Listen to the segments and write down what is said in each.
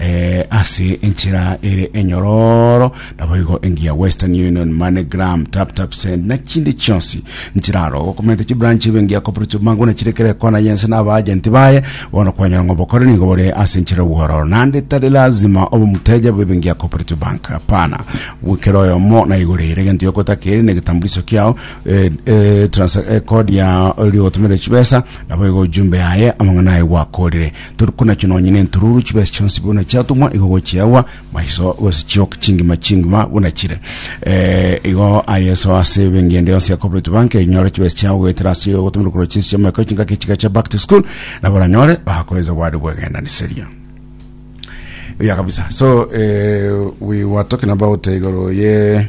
eh, ase enchera ere enyororo naboigo engiya western union moneygram tap tap send na chinde chionsi nchiraro gokomenta chibranch ebe engiya cooperative mango na chirekere kona yense na abaagenti baye bono kwanyora ng'a obokore nigo bore ase enchera obwororo nande tari lazima obe omuteja bw'ebe engiya cooperative bank hapana gwikera oyomo naigoreire egento yokotakeri na egetambuliso kiao eh, eh, transa- eh, kodi ya ori gotomerera chibesa naboigo ojumbe yaye amang'ana aye gwakorire Tori konachia nonya nentururu chibesa chionsi buna chiatumwa igo gochiagwa maiso gose chioka chingima chingima buna chire. Eh, igo ayeso ase ebengende yonsi ya Cooperative Bank enyore chibesa chiao goetera ase ogotumira korwa chinsi chiamoika chingaki chiga chia back to school na baranyore bakoenza bwari bwegenaniseria ya kabisa so eh, we were talking about igoro ye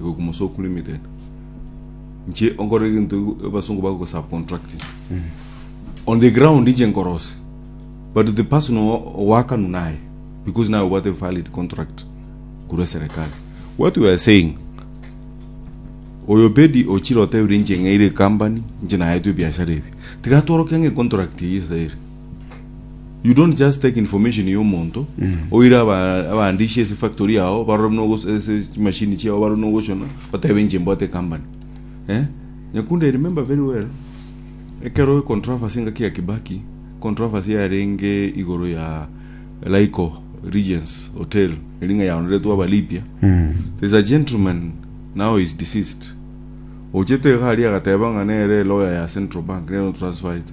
Igo Kumusokuru Limited. Inche onkore egento abasungu bagoka subcontracting. On the ground inche nkorose. But the person o- owakanu naye because naye obwate valid contract korwa serikali. What we are saying oyo pedi ochire otebire inche ng'eire company inche naetwe ebiasara ebi tiga tworoke ng'e contract eye esere you don't just take information ya omonto oire aba- abaandishi ase factory yao barore buna ogos- ase chimashini chiao barore buna ogoshona batebe inche mbwate company eh? nyakunde I remember very well ekero controversy engaki ya kibaki controversy yarenge igoro ya laiko regions hotel eri ng'a yaoneretwe abalipia there's a gentleman now is deceased ochete iga aria agateba ng'a nere lawyer ya central bank nero transfer it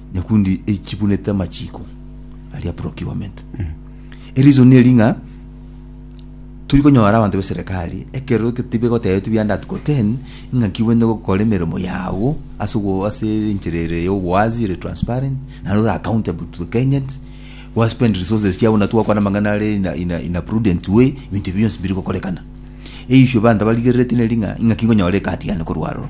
Nyakundi echibunete amachiko aria procurement. Erizoni eri ng'a turi konyora abanto b'eserekari ekero ke- tibegotebeti buya under article 10 ing'aki bwene gokora emeremo yago ase ogo ase enchera ere ya obowazi ere transparent naende ore accountable to the Kenyans gwa spend resources chiabo buna twakwana amang'ana are in a- in a- in a prudent way ebinto ebio bionsi mbiri gokorekana. Eissue abanto barigereretie neri ng'a ing'aki nkonyora ecard yane korwa aroro.